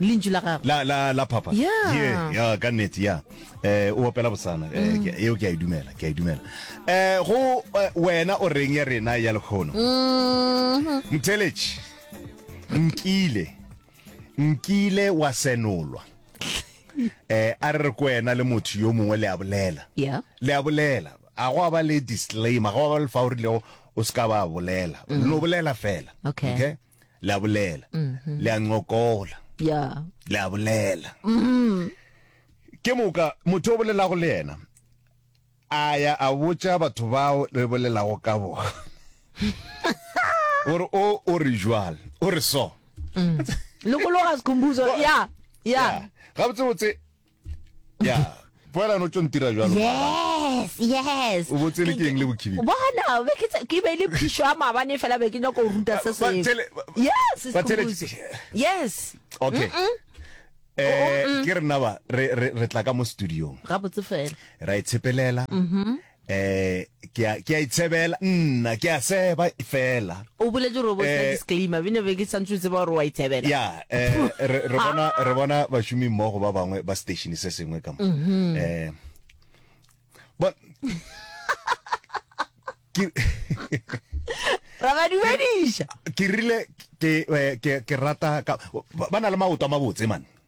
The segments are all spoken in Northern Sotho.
Lentšu la Gagwe. La, la, la phapha. Ya. Ye, ya, ka nnete, ya. Eh, o opela bosana. Eh, mm. ke, eo ke a e dumela, ke a e dumela. Eh, go, eh, wena o reng ya rena ya lekgono? Mm -hmm. Mtheletši, nkile, nkile wa senolwa. eh a re ko ena le motho yo mongwe le a bolela yeah. le a bolela a go ba le disclaimer go ba le fa o rile o se ka ba bolela mm. no bolela fela okay, okay? le a bolela le a ncokola ya le a bolela ke moka motho o bolelago le yena a ya a botša batho bao le bolelago ka bona gore o o re jwal o re so lokologa sikhumbuzo ya ya Yeah. gabotsebotse ya poelano tso ntira jalo yes yes o botse le keng le bokhibi bona be ke ke be le phisho ya mabane fela be ke nyako go ruta se se yes yes okay eh ke re naba re re tla ka mo studio ga botse fela ra itshepelela e mhm Ee, ke a, ke a itshebela, nna, ke a seba, fela. O boletše gore o bo tla disclaimer, bene be ke santse o tseba gore o a itshebela. Ya, eh, re, re bona, re bona bašomi mmogo ba bangwe ba station se sengwe ka mo. Eh, bon, ke, Ra ba dumediša. ke rile, ke, eh, ke, ke rata, ka, ba, ba na le maoto a mabotse, man.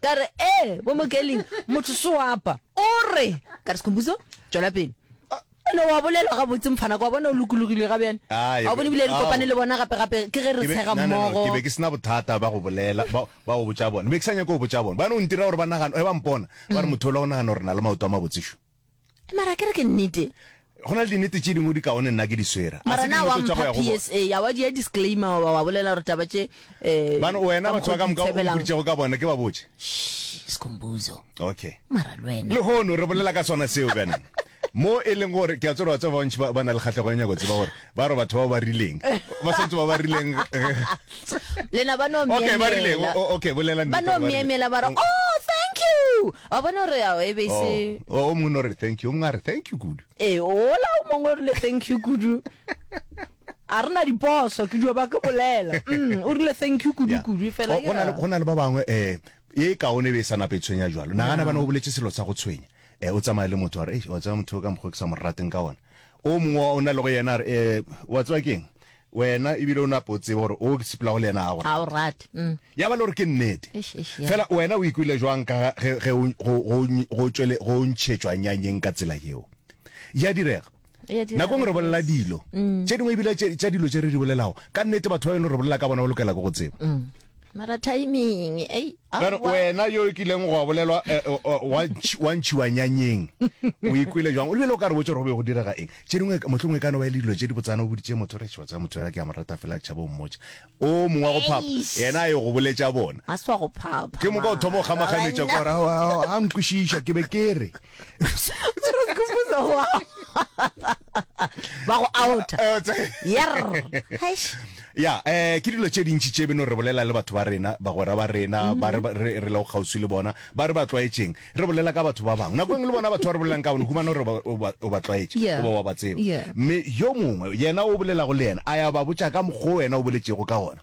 Ka re, Ee, bo Mokeling, motho se wa apa. O re, Ka re, Sekhumbuzo, tšwela pele. O ne wa bolela gabotse, mfanaka, wa bona o lokologilwe ga bjane. Ga o bone ebile re kopane le bona gape-gape, ke ge re tshega mmogo. Ke be ke se na bothata ba go bolela, ba, ba go botša bona. Be ke sa nyake go botša bona. Bjana o ntira gore ba nagane, ge ba mpona, ba re, Motho yola o nagana gore re na le maoto a mabotse šo? Mara a ke re ke nnete. Go na le dinete tše dingwe di kaone nna ke di swera. Mara na wa mpha PSA, a wa dia disclaimer wa ba wa bolela gore taba tše eh. Bana wena batho ba ka moka o mpoditšego ka bona ke ba botše. Shh, Skhumbuzo. Okay. Mara lwena. Le hono re bolela ka sona seo bana. mo e leng gore ke a tsoro batho ba bantši ba na le kgatlhego ya nyako tseba gore ba re batho ba ba rileng ba santse ba ba rileng lena ba no okay ba rileng okay bolela ba no miemela ba re oh thank you Wa bona gore ao e be e se. Oh, o mongwe no re thank you, o mongwe a re thank you kudu. E, ola o mongwe o rile thank you kudu. A rena diposo ke dio ba ke bolela. Mm, o rile thank you kudu kudu e fela. Go na le go na le ba bangwe eh e kaone be e sa nape tshwenya jwalo. Nagana bana o boletse selo sa go tshwenya. Eh o tsamaya le motho a re, "Eish, wa tsaya motho ka mokgwa ke sa mo rateng ka ona." O mongwe o na le go yena a re, "Eh, wa tswa keng?" Wena e bile o nape o tsebe gore o sepelago le yena ga go rate. rate. Mm. Ya ba le gore ke nnete. Eish, eish, ya. Fela wena o ikwele jwang ka ga ge, ge o, go, go, go, tšwele, go ntšhetšwa nyanyeng ka tsela yeo? Ya direga. Ya direga, Nakong re bolela yes. dilo Mm. tše dingwe ebile tše, tša dilo tše re di bolelago, ka nnete batho ba beno re bolela ka bona ba lokela ke go tseba. mara timing ei wena yo o kileng go a bolelwa eh, eh, eh, wa ntshiwa nyanyeng o ikwele jwang o lebele o ka re botse gore go be go direga eng tse dingwe motlhong e kano ba e le dilo tse di botsana o boditse motho re tshiwa tsa motho ya ke a mo rata fela tšhabo mmotsa o mongwe wa go phapa yena a ye go boletsa bona ke moka o thoma go kgamaganetsa ka gore a nkwešiša ke be ke re ba go outa Eh, tse- yerr Eish. ya um ke dilo tše dintši tše beno re bolela le batho ba rena bagwera ba rena ba re ba- re re lego kgauswi le bona ba re ba tlwaetšeng re bolela ka batho ba bangwe nako engwe le bona batho ba re bolelang ka bone humana gore ba- o ba- o ba tlwaetše Yeah. goba wa ba tseba Yeah. mme yo mongwe yena o bolelago le yena a ya ba botša ka mokgwa o wena o boletšego ka gona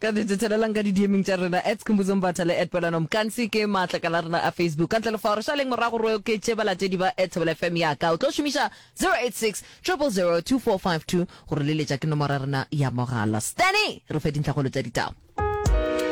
Ka dite thelelang ka didieming tša rena at Skhumbuzo Mbatha le at Pelano Mkansi ke maatlakala a rena a Facebook. Ka ntle le fao, re šaleng morago re oketše balatedi ba at Thobela FM ya ka. O tlo šomiša 0860002452 go re leletša ke nomoro ya rena ya mogala. Stanny re fe dintlhakgolo tša ditaba.